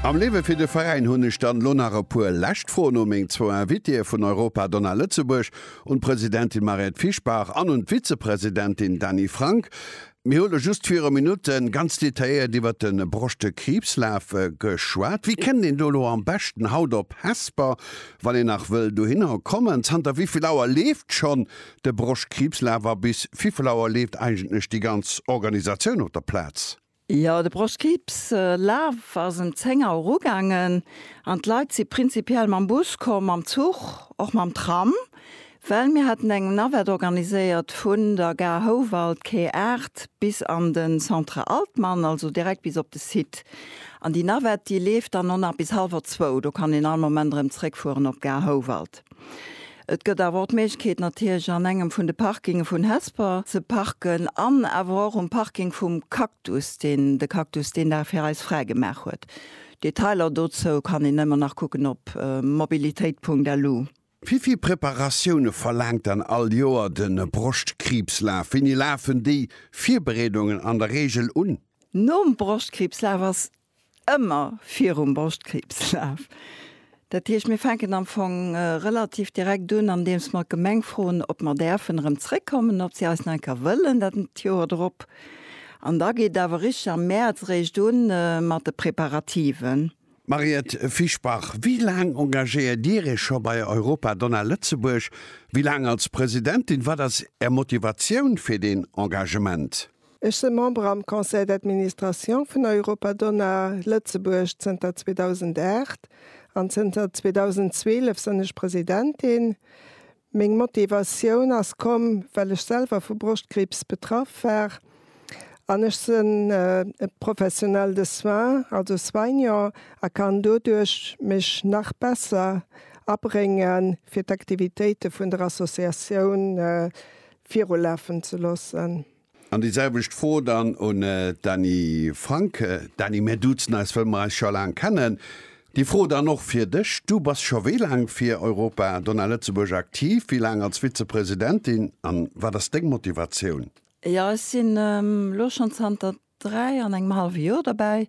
Am Liewe fir de Veräin hunn ech dann elo nach e puer lescht Froen u meng zwou Invitéeë vun Europa Donna Lëtzebuerg, un d'Presidentin Mariette Fischbach an un d'Vizepresidentin Dany Frank. Mir hu lo just viru Minutte ganz detailléiert iwwert de Broschtekriibslaf geschwat. Wéi kënnt een do elo am beschten haut op Hesper, wann een nach wëll dohinner kommen? Zanter wéi vill Auer leeft schonn de Broschtkriibslaf a bis viffel Auer leeft eigentlech déi ganz Organisatioun op der Plaz? Jo, de Brostkriibslaf ass em 10 Auer ugaangen an d'Leit si prinzipiell mam Bus komm, mam Zuch, och mam Tram, well mir haten eng Navette organiséiert vun der Gare Houwald, Quai 8, bis an de Centre Altmann, also direkt bis op de Site. An déi Navette, déi leeft dann och nach bis hallwer zwou, do kann een all Moment erëm zréckfueren op d'Gare Houwald. Et gëtt awer och d'Méiglechkeet natierlech an engem vun de Parkinge vun Hesper ze parken an awer och um Parking vum Cactus, deen de Cactus deen Dag fir eis fräi gemaach huet. Detailer dozou kann een ëmmer nach kucken op mobilitéit.lu. Wéi vill Preparatioune verlaangt dann all Joer de Broschtkriibslaf? Wéini lafen déi Virbereedungen an der Reegel un? Nom Broschtkriibslaf ass Ëmmer virum Broschtkriibslaf. Dat heescht, mir fänken am Fong relativ direkt un, andeems mer d'Gemeng froen, ob mer däerfen erëm zréckkommen, ob si eis nach eng Kéier wëllen dat Joer drop. An da geet et awer richteg am Mäerz eréischt u mat de Preparativen. Mariette Fischbach, Wéi laang engagéiert Dir Iech scho bei Europa Donna Lëtzebuerg? Wéi laang als Presidentin? Wat ass Är Motivatioun fir deen Engagement? Ech se Member am Conseil d'administration vun Europa Donna Lëtzebuerg zënter 2008 an zënter 2012 sënn ech Presidentin. Meng Motivatioun ass komm, well ech selwer vu Broschtkriibs betraff war an ech sënn e Professionelle de soins, also Soignant, a kann doduerch mech nach besser abrénge fir d'Aktivitéite vun der Associatioun virulafen ze loossen. An déi selwecht Fro dann un d'Dany Frank. Dany, mir duzen eis, wëll mer eis scho laang kennen. Déi Fro dann och fir dech, du bass scho wéi laang fir Europa Donna Lëtzebuerg aktiv, wéi laang als Vizepresidentin an wat ass deng Motivatioun? Jo, ech sinn elo schonn zanter dräi an engem hallwe Joer dobäi.